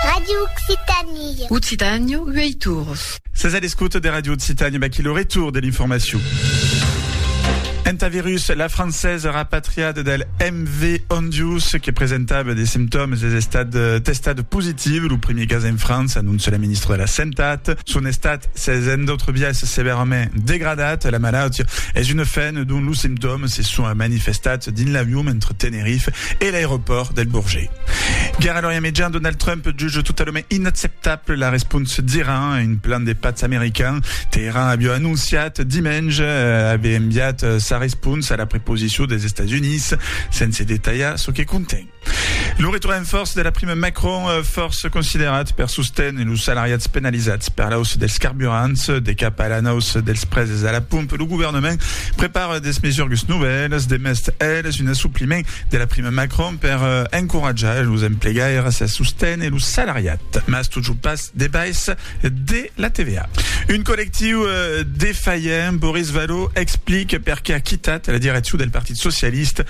Radio Occitanie. Occitània, uèi torns. Sètz a l'escota de Radio Occitània, vaquí lo retorn de l'informacion. Entà virus, la francesa rapatriat del MV Ondius que presentava de simptòmes es estat testat positiu. Lo primier cas en França, anonça la ministra de la Santat. Son estat s'es en d'autres biais sevèrament degradat, la malautia es una fen dont los simptòmes se son manifestats dins l'avion entre Tenerife e l'aeropòrt del Bourget. Guèrra l'Orient Mejan, Donald Trump juge totalament inacceptable la responsa d'Iran a un plan de patz american. Teheran aviá anonciat dimenge aver enviat sa responsa a la preposicion dels Estats Units, sense detalhar çò que conten. Lo retorn en fòrça de la prima Macron, fòrça considerat per sosténer los salariats penalizats per l'auça dels carburants, de cap a l'anauça dels preses a la pompa, lo governament prepara de mesurgues novèlas, demest eles un assopliment de la prima Macron per encoratjar los emplegaires a sosténer lo salariat, mas totjorn pas de baissa de la TVA. Un collectiu defalhent, Boris Vallaud explica perqué a quitat la direccion del Partit Socialista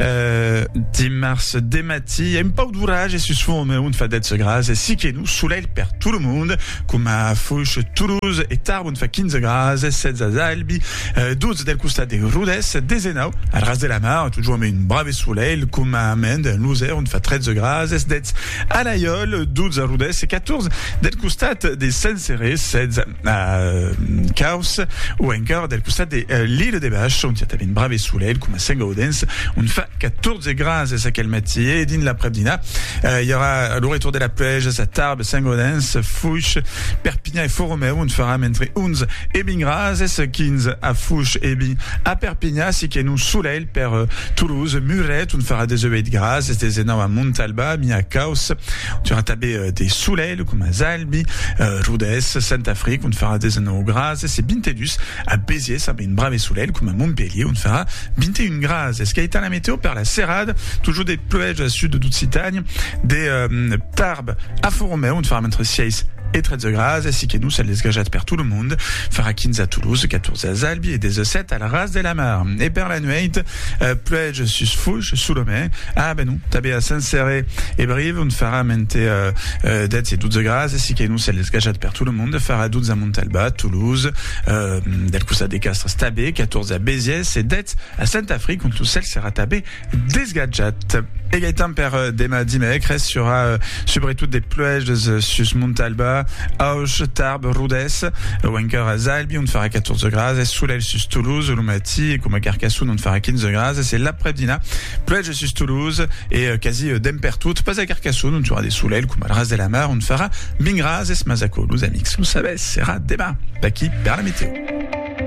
Euh, dimarts de matí, un pauc d'oratge sus fond un fadet segras, e si que non solelh per tot lo mond, coma Foix, Toulouse e Tarbes on fa 15 graus, 16 a Albi, 12 del costat de Rodès, 19 al ras de la mar, totjorn amb un brave solelh, coma a Mende, en Losèr, on fa 13 graus, 17 a Laiòl, 12 a Rodès e 14 del costat de Saint-Céré, 16 Caus, o encara del costat de l'illa de Bach, ont i a tanben brave solelh, coma Sent Gaudens, ont fa 14 grases aquel matí, e dins l'aprèp dinar i aurà lo retorn de la pluèja a Tarbes, Sent Gaudens, Fush, Perpinhan e Fòromèu, ont farà mentre 11 e 20 grases, 15 a Fush e 20 a Perpinhan, si que non solelh per Toulouse, Muret, ont farà 18 grases, 19 a Montalba, Mià, Caus, ont i aurà tanben de solelh, coma Zalh, Albi, Rodés, Saint-Affrique, ont farà 19 grases, e 22 a Béziers amb un brave solelh, coma Montpelhier, ont farà 21 grases. Gaitana Meteo per la serada, totjor de pluèja al sud d'Occitània, de Tarbes a Font-Romèu, ont farà mentre 6 e 13 grases, si que nos a lesgajat per tot lo monde, farà 15 a Toulouse, 14 a Albi e 17 al ras de la mar. E per la nuèit, Puèi sus fuch sul omè. Ah, ben non, tanben a Saint-Céré e Brive ont faram entre dètz e dotze grads, e si qu'ei non cèl desgajat per tot lo monde, farà dotze a Montalba, Toulouse, del costat de Castres tanben, catòrze a Béziers e dètz a Saint-Afric ont lo cèl serà tanben desgajat. E gaitan per demà dimècres serà subretot de puèjas sus Montalba, Auch, Tarbes, Rodés, o encara Zalbi ont farà catòrze grads e solelh sus Toulouse, lo Martí, coma Carcassonne on farà 15 grads e se l'aprèp dinar pluèja sus Toulouse e quasi dempè pertot, pas a Carcassonne ont aurà de solelh coma al ras de la mar ont farà 20 grads mas aquò los amics lo sabètz serà demà d'aqui per la meteo.